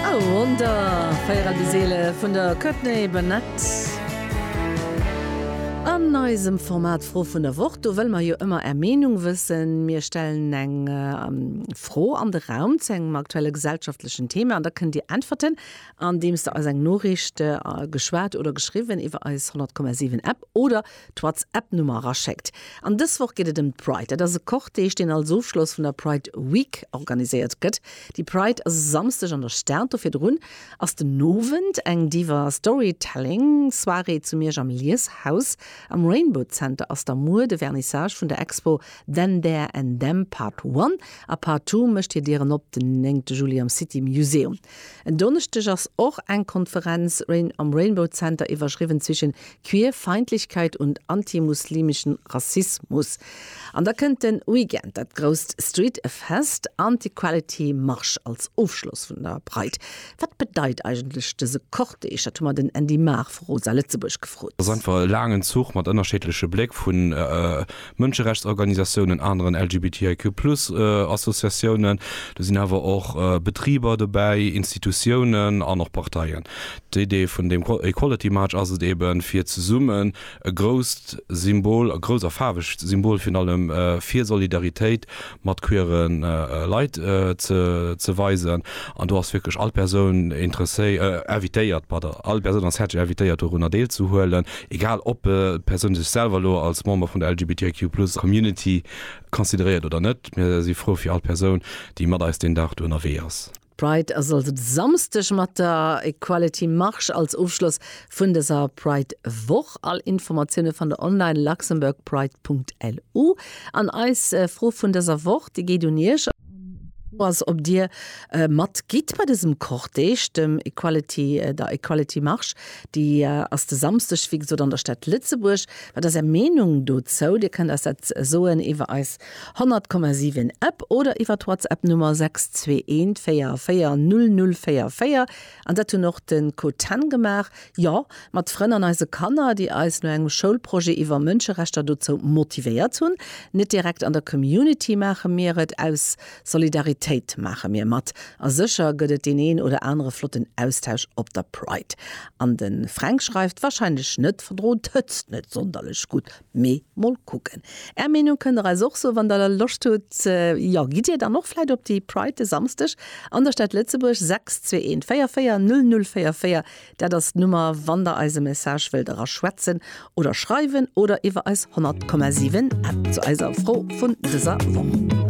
I Wonder, Feierer déi Seele vun der Courtney Barnett. An eisem Format Fro vun der Woch, do wëlle mer jo ëmmer Är Meenung wëssen. Mir stellen eng Fro an de Raum zu engem aktuelle gesellschaftlechen Thema an da kënnt Dir äntwerten, andeems Der eis eng Noriicht geschwat oder geschriwwen iwwer eis 100,7 App oder d'Whatsapp-Nummer eraschéckt. An dës Woch geet et ëm d'Pride. Dat ass e Cortège, deen als Ofschloss vun der Pride Week organiséiert gëtt. Déi Pride ass e Samsdeg an der Stad. Do virdrun ass den Owend eng Diva Storytelling Soirée zu Miersch am Lieshaus. Am Rainbow Center ass da muer de Vernissage vun der Expo Then, There and Them Part One a Part Two mécht hir Dieren op den 9 Juli am City Museum. En Donneschdeg ass och eng Konferenz am Rainbow Center iwwerschriwwen zwischen Queerfeindlichkeit und antimuslimischen Rassismus. An da kënnt den Weekend dat grousst Street Fest an d'Equality Marsch als Ofschloss vun der Pride. Wat bedeit eigentlech dëse Cortège? Dat hu mer den Andy Mahr vu Rosa Lëtzebuerg gefrot. Ass einfach e laangen Zuch mat ënnerscheedleche Bléck vun. Mënscherechtsorganisatiounen, aneren LGBTIQ plus Associatiounen, do sinn awer och Betriber dobäi, Institutiounen an och Parteien. D'Idee vun deem Equality March ass et eben, fir zesummen e grousst Symbol, e grousst a faarwegt Symbol virun allem, fir Solidaritéit mat queere Leit ze weisen. An do ass wierklech all Persoun invitéiert, pardon, all Persoun ass häerzlech invitéiert dorunner deelzehuelen, egal ob d'Persoun sech selwer elo als Member vun der LGBTIQ Plus Community consideréiert oder net. Mir si frou fir all Persoun, déi mat eis deen Dag do ënnerwee ass. D'Pride ass also de Samsdeg mat der Equality Marche als Ofschloss vun dëser Pride Woch. All Informatioune fannt der online, luxembourgpride.lu. An eis Fro vun dëser Woch, déi geet un iech. D'Fro ass, ob dir mat gitt bei dësem Cortège, dem Equality, der Equality Marche. Déi ass de Samsdeg, wéi gesot, an der Stad Lëtzebuerg. Wat ass är Meenung dozou? Dir kënnt eis dat soen iwwer eis 100,7 App oder iwwer d'Whatsapp Nummer 6214400044 an dat hunn och den Co Ten gemaach, jo mat Frënn an eise Kanner déi eis no engem Schoulprojet iwwer Mënscherechter dozou motivéiert hunn. Net direkt an der Community maache mir et, aus Solidaritéit maache mir mat a sécher gëtt et deen een oder anere flotten Austausch op der Pride. An de Fränk schreift, wahrscheinlech net verdrot, hëtzt net sonderlech gutt. Mee mol kucken. Är Meenung kënnt der eis och soen, wann der Loscht hutt. Jo, gitt dir dann och vläit op déi Pride de Samsdeg an der Stad Lëtzebuerg? 621 44 00 44, dat ass d'Nummer, wann der eis e Message wëllt eraschwätzen oder schreiwen oder iwwer eis 100,7 App zu eiser Fro vun dëser Woch.